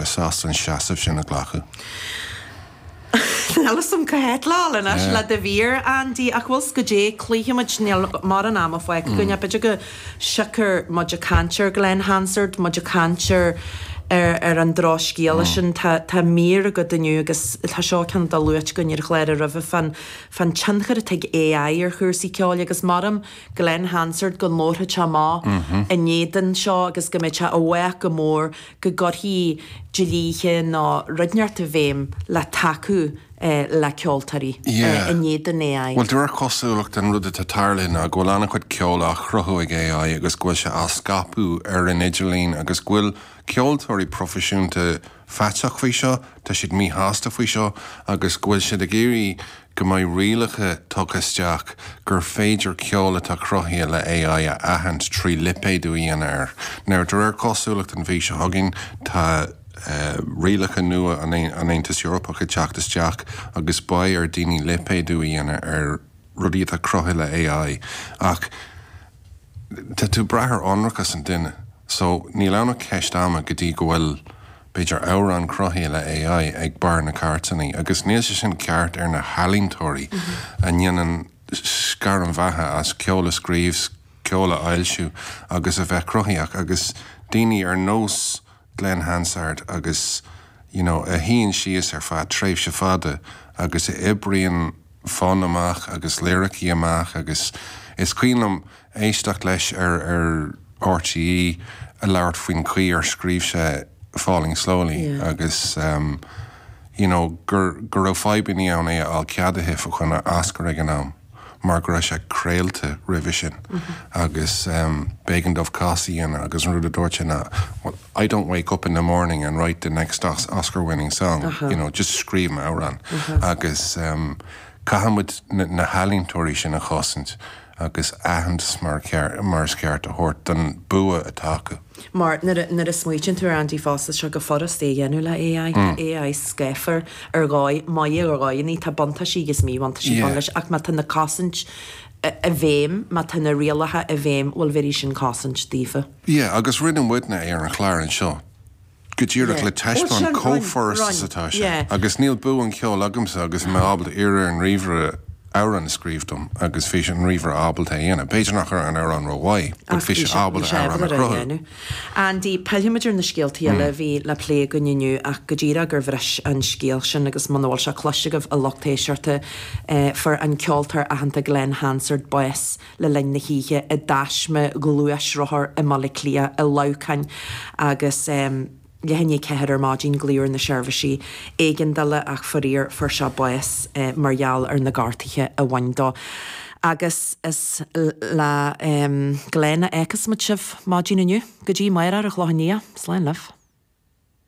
bheith sásta an seasamh sin a ghlacadh. Níl 's agam cá bhfuil muid anois le do mhír, a Andy, ach bhfuil 's agat, cloífimid, níl mórán ama fágtha againn, ach b'fhéidir go siocair muid ag caint ar Glen Hansard, muid ag caint ar ar an drochscéala sin, tá tá mír agat inniu agus tá seo ceann atá luaite againn ar chlár roimhe fan fan tionchar atá ag AI ar chúrsaí ceoil agus measaim Glen Hansard go labharfadh sé amach in éadan seo agus go mbeadh sé i bhfách leis go mór go gcuirfí dlíthe níos neartmhaire i bhfeidhm le tacú le ceoltóirí Yeah. in éadan AI. Bhuel de réir cosúlachta an rud atá tarlaithe ná go bhfuil an-chuid ceoil á chruthú ag AI agus go bhfuil sé á scaipeadh ar an idirlíon agus go bhfuil ceoltóirí proifisiúnta faitíoch faoi seo, tá siad míshásta faoi seo agus go bhfuil siad ag iarraidh Go mbeidh rialacha tugtha isteach gur féidir ceol atá cruthaithe le AI a aithint trí lipéadú a dhéanamh air. Now, de réir cosúlachta an mhí seo chugainn, tá rialacha nua ón Aontas Eorpach ag teacht isteach agus beidh ar dhaoine lipéadú a dhéanamh ar rudaí atá cruthaithe le AI. Ach tá tú ag brath ar ionracas an duine. So, níl ann ach ceist ama go dtí go bhfuil. B'fhéidir amhrán cruthaithe le AI ag barr na gcairteannaí, agus níl sé sin ceart ar na healaíntóirí a ndéanann a gcairm bheatha as ceol a scríobh, ceol a fhoilsiú agus a bheith cruthaíoch, agus daoine ar nós Glen Hansard agus you know a shuíonn síos ar feadh tréimhse fada agus a oibríonn fonn amach agus liricí amach agus is cuimhin liom éisteacht leis ar RTÉ ag labhairt faoin chaoi ar scríobh sé Falling Slowly agus you know gur go raibh fadhbannaí ann é a fháil ceadaithe fá choinne Oscar ag an am mar go raibh sé craolta roimhe sin agus b'éigean dóibh cás a dhéanamh agus an rud a dúirt sé ná I don't wake up in the morning and write the next Oscar winning song you know just scríobhaim amhrán agus caithfidh muid na healaíontóirí sin a chosaint agus aitheantas mar is ceart a thabhairt don bua atá acu. Mar nuair a smaoitíonn tú air Andy fosta tá seo chomh furast é a dhéanamh le AI. Tá AI scáfar ar dhóigh, maith é ar dhóigheannaí tá buntáisí agus míbhuntáistí ann leis ach má tá na cosaintí i bhfeidhm, má tá na rialacha i bhfeidhm bhuel bhéarfaidh sin cosaint daofa. Yeah, agus rinne muidne é ar an chlár anseo go díreach le Yeah. taispeáint chomh furast is atá sé. Yeah. Agus níl bua an cheoil agamsa agus mé ábalta iarraidh ar an ríomhaire amhrán a scríobh dom agus bhí an ríomhaire ábalta é a dhéanamh. B'fhéidir nach raibh an amhrán ró-mhaith, but Ach bhí bhí sé sé, bhí ábalta sé amhrán a ábalta é a chruthú. dhéanamh. Andy, pillfimid ar na scéaltaí eile a bhí le plé againn inniu ach go díreach gur bhris an scéal sin agus muna bhfuil sé cloiste agaibh a lucht éisteachta, eh, fuair an ceoltóir aitheanta Glen Hansard bás le linn na hoíche i dtaisme gluaisrothar i mBaile Átha Cliath i Leamhcán agus um leathuair tar éis a ceathair ar maidin glaodh ar na seirbhisí éigeandála ach faraor fuair sé bás mar gheall ar na gortuithe a bhain dó agus is leis sin a fhágfas muid sibh maidin inniu go dtí amárach le cúnamh Dé slán libh.